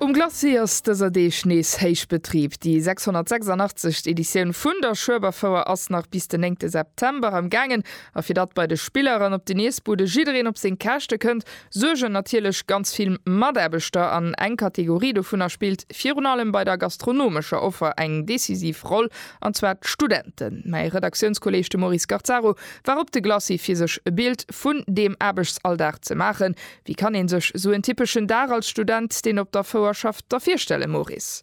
Um Glacis ass dëser Deeg nees héich Betrib. Déi 686. Editioun vun der Schueberfouer ass nach bis den 9 September am gaangen a fir datt bei de Spiller an op den Iessbude jiddereen op seng Käschte kënnt, suergen natierlech ganz vill Mataarbechter an eng Kategorie dovunner spillt virun allem bei der gastronomescher Offer eng decisiv Roll, an zwar d'Studenten. Mäi Redaktiounskolleeg, de Maurice Garzaro, war op de Glacis fir sech e Bild vun deem Aarbechtsalldag ze maachen, Wéi kann een sech sou en typeschen Dag als Student, deen op der Fouer schafft, da virstellen, Maurice?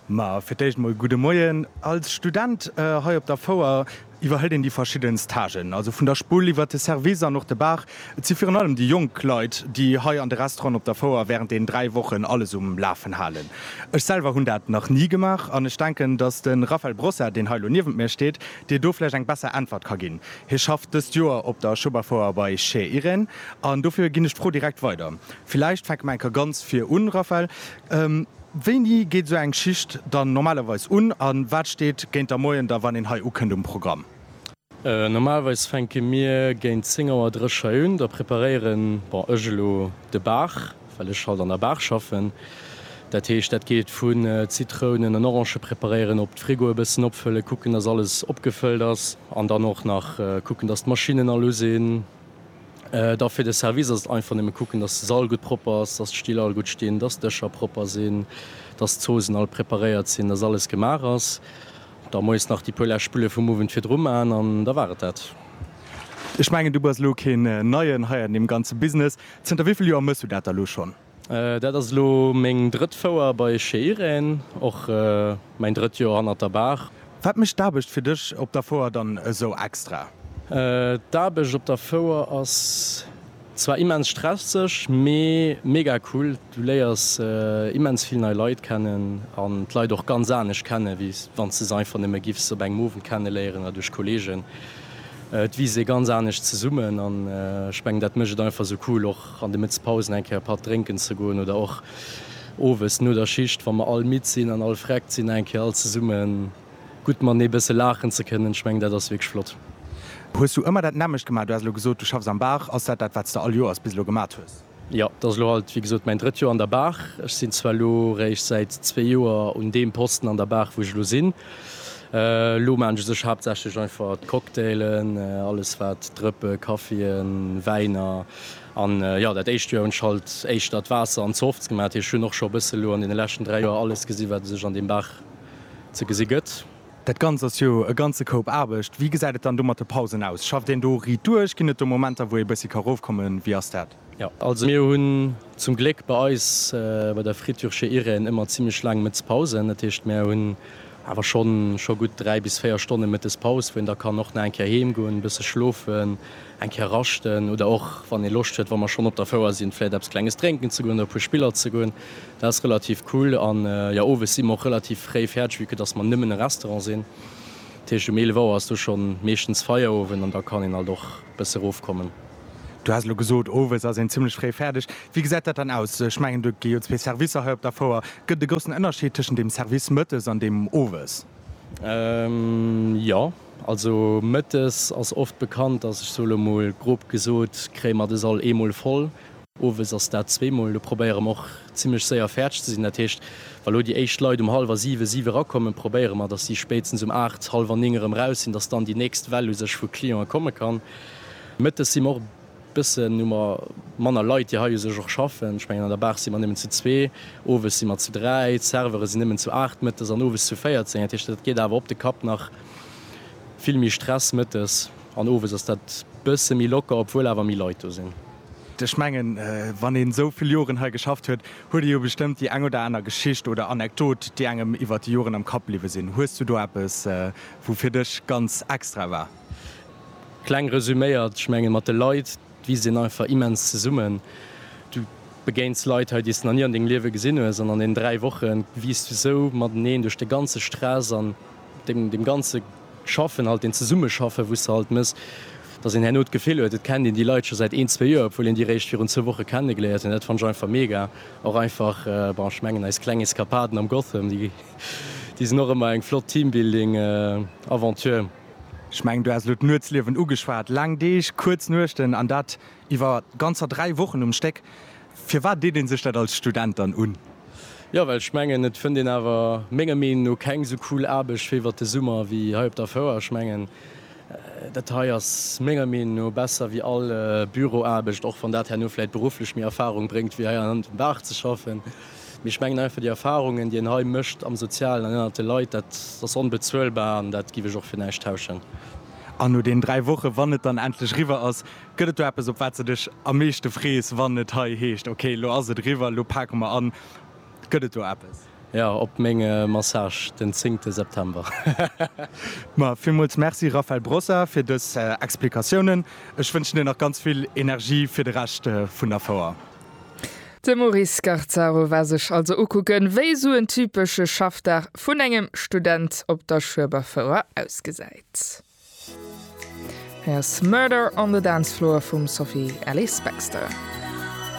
Ma fir d'éischt mol gudde Moien. Als Student hei op der Fouer iwwerhëlt een déi verschidden Stagen, also vun der Spull iwwert de Service an och de Bar. Et si virun allem déi jonk Leit, déi hei an de Restauranten op der Fouer wärend deenen dräi Wochen alles um Lafen halen. Ech selwer hunn dat nach ni gemaach an ech denken, datt de Raphael Brossa, deen hei elo niewent mir steet, dir do vläicht eng besser Äntwert ka ginn. Hie schafft dëst Joer op der Schoberfouer bei Chez Irène. An dofir ginn ech d'Fro direkt weider. Villäicht fänke mer eng Kéier ganz vir un, Raphaël. Wéini geet esou eng Schicht dann normalerweis un a wat steet géint der Moien da, wann een hei ukënnt, um Programm? Normalerweis fänke mir géint 10 Auer dréch hei un. Da preparéieren, bon, ech elo de Baach, well ech halt an der Baach schaffen. Dat heescht, dat geet vu Zitrounen an Orange preparéieren, op d'Frigoe e bëssen opfëllen, kucken, dass alles opgefëllt ass an dann och nach kucken, dass d'Maschinnen all u sinn. Da fir de Service ass et einfach nëmme kucken, dass de Sall gutt propper ass, dass d'Still all gutt stinn, dass d'Dëscher propper sinn, dass d'Zoosen all preparéiert sinn, dass alles gemaach ass. Da moies nach déi puer lescht Spulle vum Owend virdru maachen an da war et dat. Ech mengen, du bass elo keen Neien hei an deem ganze Business. Zënter wéi vill Joer mëss du dat da elo schonn? Dat ass elo meng drëtt Fouer bei Chez Irène, och mäin drëtt Joer hannert der Baach. Wat mécht d'Aarbecht fir dech op der Fouer dann esou extra? D'Aarbecht op der Fouer ass zwar immens stresseg, mee mega cool. Du léiers immens vill nei Leit kennen an d'Leit och ganz anescht kennen, wéi wann s de se einfach nëmme giffs op engem Owend kenneléieren oder duerch Kolleegen. Et wiisst ee ganz anescht zesummen an ech mengen dat mécht et einfach esou cool och an de Mëttespausen eng Kéier e Patt drénken ze goen oder och owes no der Schicht, wa mer all midd sinn an all vreckt sinn, eng Kéier all zesumme gutt matenee e bësse laachen ze kënnen. Ech mengen, dat ass wierklech flott. Hues du ëmmer dat nämmlecht gemaach? Du has elo gesot, du schaffs am Baach. Ass dat dat, wat s de all Joers bis elo gemat hues? Jo, dat ass elo alt, wéi gesot, mäin drëtt Joer an der Baach. Ech sinn zwar elo réischt säit zwee Joer un deem Posten an der Baach, wou ech elo sinn. Elo maan ech sech haaptsächlech einfach d'Cocktailen, alles waat Drëppe, Kaffien, Wäiner an jo daat éischt Joer hun ech halt éischter d'Waasser an Softs gemaat. Heesch hun och scho bëssen elo an den leschten 3 Joer alles gesi waat et sech an dem Baach ze gesi gëtt. Daat ganzt ass jo e ganze Koup Aarbecht. Wéi gesäit et dann do mat de Pausen aus? Schafft een do riit duerch? Gin et do Momenter wou ee bëssi ka roofkommen? Wéi ass daat? Jo, also mir hunn zum Gléck bei eis bei der Friture chez Irène ëmmer zimlech laang Mëtz Pausen. Dat heescht, mär hunn awer schonn scho gutt 3 bis 4 Stonne Mëttes Paus, wou een da kann och nach eng Kéier heem goen, bësse schlofen, eng Kéier raschten oder och, wann ee Loscht huet, wa mer schonn op der Fouer sinn, vläicht eppes Klenges drénken ze goen oder e puer Spiller ze goen. Dat ass relativ cool. An jo, owes si mer och relativ fréi fäerdeg, vue que dass mer nëmmen e Restaurant sinn. Dat heescht, um 11 Auer ass do schonn meeschtens Feierowend an da kann een halt och bësse rofkommen. Du has elo gesot, owes ass een zimmlech fréi fäerdeg. Wéi gesäit dat dann aus? Ech mengen, do gi jo zwee Servicer hei op der Fouer. Gëtt et e groussen Ënnerscheed tëschent dem Service mëttes an deem owes? Jo. Also mëttes ass oft bekannt, dass ech sou elo mol grob gesot, kréie mer de Sall eemol voll. Owes ass dat zweemol. Do probéiere mer och zimmlech séier fäerdeg ze sinn. Dat heescht, wa lo déi éischt Leit um hallwer siwe, siwe erakommen, probéiere mer, dass si spéitstens um aacht, hallwer ning erëm raus sinn, dass dann déi nächst Well u sech vu Cliente komme kann. Mëttes si mer och bëssen, hu mer manner Leit, déi hei u sech och schaffen. Ech mengen, an der Bar si mer nëmmen zu zwee, owes si mer zu dräi, d'Serveure sinn nëmmen zu aacht mëttes an owes zu véierzéng. Dat heescht, dat geet awer op de Kapp nach vill méi Stress. Mëttes an owes ass dat bësse méi locker, obwuel awer méi Leit do sinn. Ech mengen, wann een esou vill Joren hei geschafft huet, huet ee jo bestëmmt déi eng oder aner Geschicht oder Anekdot, déi engem iwwer déi Joren am Kapp bliwwe sinn. Hues du do eppes, wou fir dech ganz extra war? Kleng resüméiert, ech mengen, mat de Leit wiisst een einfach immens zesummen. Du begéins Leit hei, déi s de nach ni an dengem Liewe gesinn hues, an an deenen dräi Woche wiisst du esou mateneen duerch de ganze Stress an deem ganze Schaffen halt, deem Zesummeschaffen, wou s de halt mëss, dass een herno d'Gefill huet, et kennt een déi Leit scho säit een, zwee Joer, obwuel een déi réischt virun zwou Woche kennegeléiert huet. Dat fannen ech einfach mega. Och einfach, bon, ech mengen, eis kleng Eskapaden am Gotham, déi sinn och ëmmer eng flott Teambuilding-Aventure. Ech mengen, du has elo d'Nuetsliewen ugeschwat. Laang Deeg, kuerz Nuechten, an dat iwwer ganzer dräi Wochen um Stéck. Firwat deet ee sech dat als Student dann un? Jo, well ech mengen, et fënnt een awer menger Meenung no keng esou cool Aarbecht wéi iwwer de Summer wéi hei op der Fouer. Ech mengen, dat hei ass menger Meenung no besser wéi all Büroaarbecht, och wann dat herno vläit berufflech méi Erfarung bréngt wéi hei an engem Baach ze schaffen. Mee ech mengen einfach, déi Erfahrungen, déi een hei mécht am Sozialen an ënnert de Leit, dat ass onbezuelbar an dat giff ech och fir näischt tauschen. An no deenen dräi Wochen, wann et dann endlech eriwwer ass, gëtt et do eppes, op wat s de dech am meeschte frees, wann et hei heescht, ok, elo ass et eriwwer, elo pake mer an? Gëtt et do eppes? Jo, op menge Massage den zéngte September. Ma villmools Merci, Raphaël Brossa, fir dës Explikatiounen. Ech wënschen dir nach ganz vill Energie fir de Rescht vun der Fouer. De Maurice Scarzaro war sech also ukucken, wéi esou en typesche Schaffdag vun engem Student op der Schueberfouer ausgesäit. Hei ass Murder on the Dance Floor vum Sophie Ellis-Bextor.